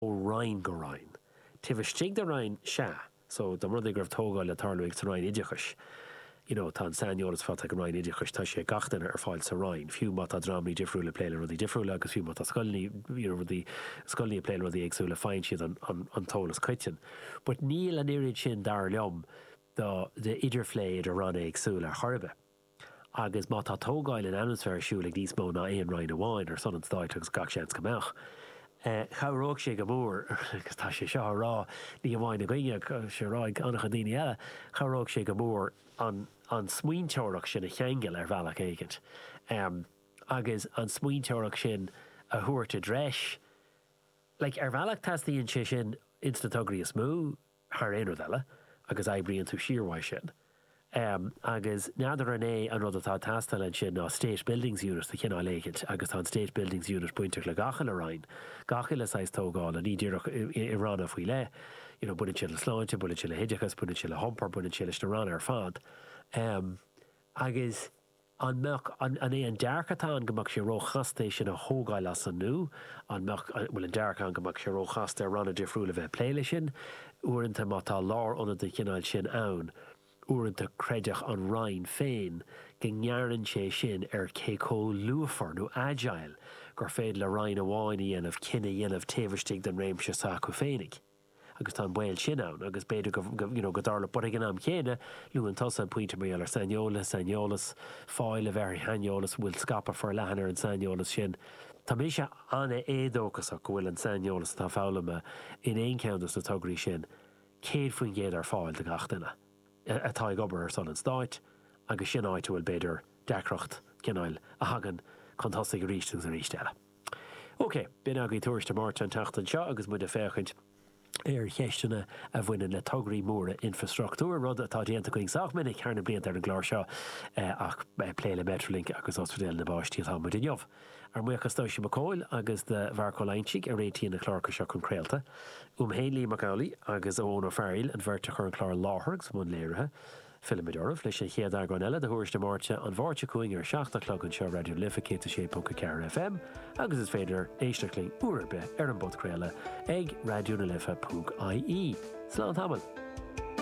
ó Roinn go Roinn. Taobh istigh de Roinn, sea, so dá mba rud é go raibh tógáil le tarlú sa Roinn Oideachais, you know, tá an saineolas faighte ag an Roinn Oideachais, tá sé ag gach duine ar fáil sa Roinn, fiú má tá dreamanna difriúla ag plé le rudaí difriúla agus fiú má tá scoileanna, you know, rudaí, scoileanna ag plé le rudaí éagsúla, faigheann siad an, an, an t-eolas coiteann. But níl an oiread sin, dar liom, do, d'idirphlé idir Ranna éagsúla ar chor ar bith. Agus má tá tógáil ionann's a bheith ar siúl ag níos mó ná aon roinn amháin, ar son an stáit agus gach seans go mbeadh, chabhróidh sé go mór, agus tá sé seo á rá ní hamháin againne ach tá sé á rá ag an-chuid daoine eile, chabhróidh sé go mór an smaointeoireacht sin a cheangal ar bhealach éigin agus an smaointeoireacht sin a thabhairt i dtreis. Like, ar bhealach teastaíonn sé sin ins na tograí is mó. thar aon rud eile, agus oibríonn tú siar uaidh sin. Agus n'fheadar an é an rud atá ag teastáil ansin ná State Buildings Unit de chineál éigint, agus tá an State Buildings Unit bainteach le gach uile roinn, gach uile saghas tógála, ní díreach i ranna faoi leith, you know, baineann sé le sláinte, baineann sé le hoideachas, baineann sé le hiompar, baineann sé leis na ranna ar fad. Agus. An mbeadh, an é an dearcadh atá ann go mbeadh sé ró-chasta é sin a thógáil as an nó an mbeadh, an bhfuil an dearcadh ann go mbeadh sé ró-chasta ar ranna difriúla bheith ag plé leis sin? Uaireanta má tá lár-ionad den chineál sin ann, uaireanta creideann an Roinn féin go ngearrann sé sin ar cé comh luafar nó agile gur féidir le Roinn amháin a dhéanamh cinneadh a dhéanamh taobh istigh den réimse s'acu féinig. agus tá an baol sin ann agus b'fhéidir go, you know, go dtarlódh, but ag an am chéanna, luann tusa an pointe mar gheall ar saineolaithe, saineolas, fáil a bheith ar shaineolas, bhfuil scaipeadh forleathan ar an saineolas sin? Tá mise an-éadóchasach go bhfuil an saineolas atá foghlamtha in aon cheann de na tograí sin céad faoin gcéad ar fáil do gach duine atá ag obair ar son an Stáit agus sin áit a bhfuil, b'fhéidir, deacracht, cineál, a thagann chun tosaigh arís agus arís eile. OK, b'in agaibh Tuairisc na Máirte an tseachtain seo agus muid ag féachaint ar cheisteanna a bhaineann le tograí móra infreastruchtúir, rud atá déanta againn sách minic thar na blianta ar an gclár seo ach plé le Metrolink agus Ospidéal na bPáistí atá muid inniu. Ár mbuíochas d'Oisín Mac Cumhaill agus do Mharc Ó Loingsigh a réitíonn na cláracha seo chun craolta. Uaim féin Liam Mac Amhlaigh agus Eoin Ó Fearghail an bheirt a chur an clár i láthair agus i mbun léirithe. Fillfimid oraibh leis an gcéad eagrán eile de Thuairisc na Máirte, an Mháirt seo chugainn ar a seacht a chlog anseo Raidió na Life 106.4 FM agus is féidir éisteacht linn uair ar bith ar an bpodchraoladh ag raidionalife.ie. Slán tamall!